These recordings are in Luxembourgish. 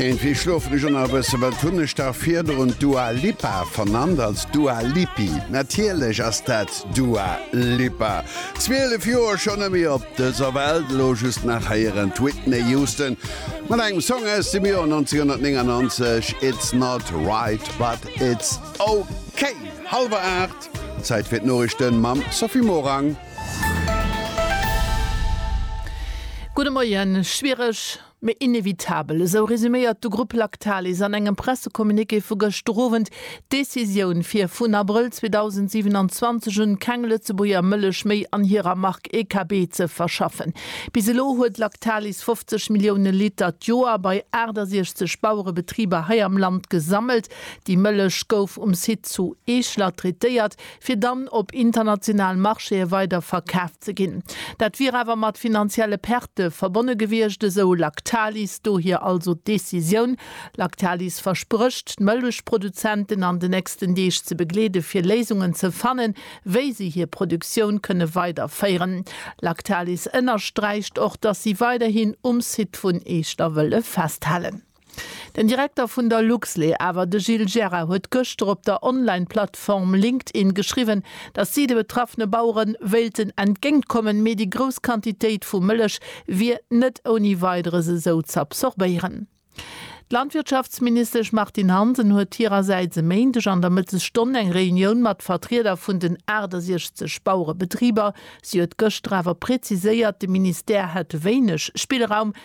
Iergendwéi schlofen ech och nach e bëssen. Wat hunn ech da virdrun Dua Lipa vernannt als Dua Lipi? Natierlech ass dat Dua Lipa. Zwielef Joer schonn ëm hir op dëser Welt. Elo just nach héieren d'Whitney Houston mat engem Song aus dem Joer 1999, It's not right but it's ok. Hallwer 8, Zäit fir d'Noriichten mam Sophie Morang. Gudde Moien. Schwiereg, mee inevitabel, esou resuméiert de Grupp Lactalis an engem Pressecommuniqué vu gëschter Owend d'Decisioun, fir vun Abrëll 2027 un keng Lëtzebuerger Mëllech méi an hirer Mark EKB ze verschaffen. Bis elo huet Lactalis 50 Millioune Liter d'Joer bei 68 Bauerebetriber hei am Land gesammelt. Déi Mëllech gouf um Site zu Eeschler traitéiert, fir dann op internationalen Marchéë weider verkaf ze ginn. Dat wier awer mat finanzielle Pertë verbonne gewiescht, esou Lactalis. Dohier also d'Decisioun. Lactalis versprécht, d'Mëllechproduzenten an de nächsten Deeg ze begleede fir Léisungen ze fannen, wéi si hir Produktioun kënne weiderféieren. Lactalis ënnersträicht och, datt si weiderhin um Site vun Eechter wëlle festhalen. Den Direkter vun der Luxlé awer, de Gilles Gira, huet gëschter op der Online-Plattform LinkedIn geschriwwen, datt si de betraffene Bauere wéilten entgéint kommen, mee déi grouss Quantitéit vu Mëllech wier net ouni Weideres esou z'absorbéieren. D'Landwirtschaftsministesch Martine Hansen huet hirersäits e Méindeg an der Mëttesstonn eng Reunioun mat Vertrieder vun den 68 Bauerebetriber. Si huet gëschter awer preziséiert, de Ministère hätt wéineg Spillraum,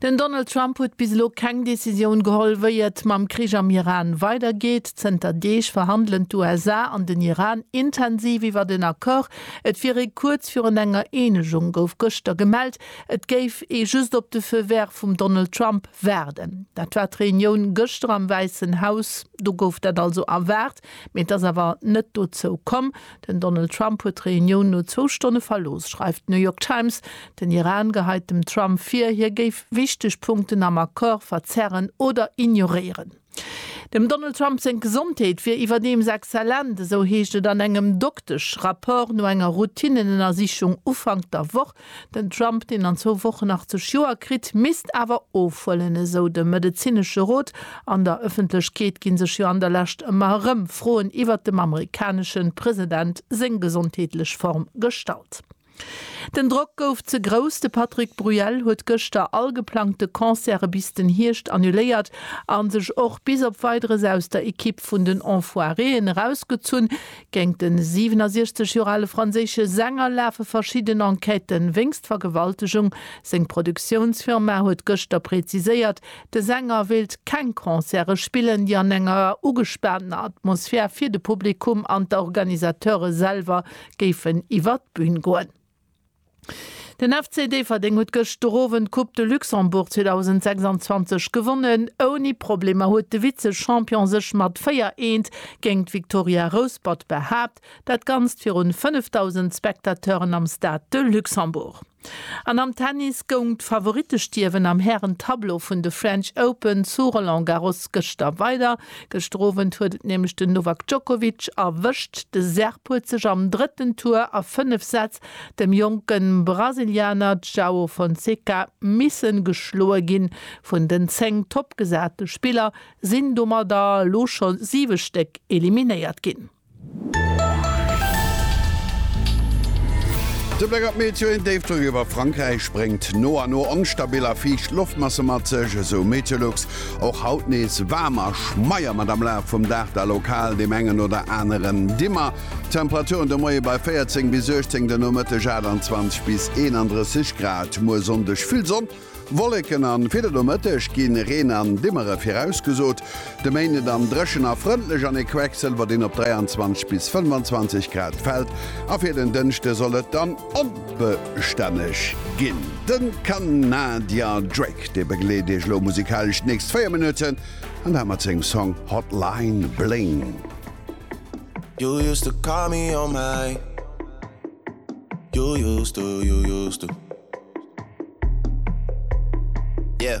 Den Donald Trump huet bis elo keng Decisioun geholl, wéi et mam Krich am Iran weidergeet. Zënter Deeg verhandelen d'USA an den Iran intensiv iwwert en Accord. Et wier ee kuerz virun enger Eenegung, gouf gëschter gemellt. Et géif ee just op de Feu vert vum Donald Trump waarden. Dat war d'Reunioun gëschter am Wäissen Haus. Do gouf dat also erwaart. Mee et ass awer net dozou komm. Den Donald Trump huet d'Reunioun no zwou Stonne verlooss, schreift d'New York Times. Den Iran gehait dem Trump vir, hie géif wichteg Punkten am Accord verzerren oder ignoréieren. Dem Donald Trump seng Gesondheet wier iwwerdeems exzellent, esou heescht et an engem Doktesch-Rapport no enger Routinnenënnersichung Ufank der Woch. Den Trump, deen an zwou Wochen 80 Joer kritt, misst awer ofhuelen, esou de medezinesche Rot. An der Ëffentlechkeet gi sech jo an der Lescht ëmmer erëm Froen iwwert dem amerikanesche President seng gesondheetlech Form gestallt. Den Drock gouf ze grouss, de Patrick Bruel huet gëschter all geplangte Concerte bis den Hierscht annuléiert a sech och bis op Weideres aus der Ekipp vun den Enfoiréen erausgezunn. Géint de 67 Joer ale franséische Sänger lafe verschidden Enquêten wéinst Vergewaltegung. Seng Produktiounsfirma huet gëschter präziséiert, de Sänger wéilt keng Concerte spillen, déi an enger ugespaantener Atmosphär fir de Publikum an d'Organisateure selwer géifen iwwer d'Bün goen. Den FC Déifferdeng huet gëschterowend d'Coupe de Luxembourg 2026 gewonnen. Ouni Problemer huet de Vize-Champion sech mat 4 Eent géint d'Victoria Rouspert behaapt, dat Ganzt virun 5.000 Spectateuren am Stade de Luxembourg. An am Tennis goung d'Favorittestierwen am Hären-Tableau vun de French Open zu Roland Garros gëschter weider. Gëschter Owend huet et nämlech den Novak Djokovic erwëscht. De Serb huet sech am drëtten Tour a fënnef Sätz dem jonke Brasilianer Joao Fonseca missen geschloe ginn. Vun den zéng toppgesate Spiller sinn domadder elo scho siwe Stéck eliminéiert ginn. De Bléck op d'Météo, Een Déifdrock iwwer Frankräich bréngt no a no onstabil a fiicht Loftmasse mat sech, esou Meteolux. Och haut nees waarm a schmeier, mat am Laf vum Dag da lokal deem engen oder aneren Dimmer. Temperaturen de Moie bei 14 bis 18, de Nomëtteg 28 bis 31 Grad. Muer Sonndeg vill Sonn. Wolleken an fir de Nomëtteg gi Reen an Dimmere virausgesot. De Méinde dann dréchen a frëndlech an ee Quecksëlwer, deen op 23 bis 25 Grad fält. A fir den Dënschde soll et dann onbestänneg ginn. De Kanadier Drake, dee begleet Iech elo musikalesch d'nächst 4 Minutten an dat mat sengem Song Hotline Bling. You used to call me on my You used to, you used to. Yeah.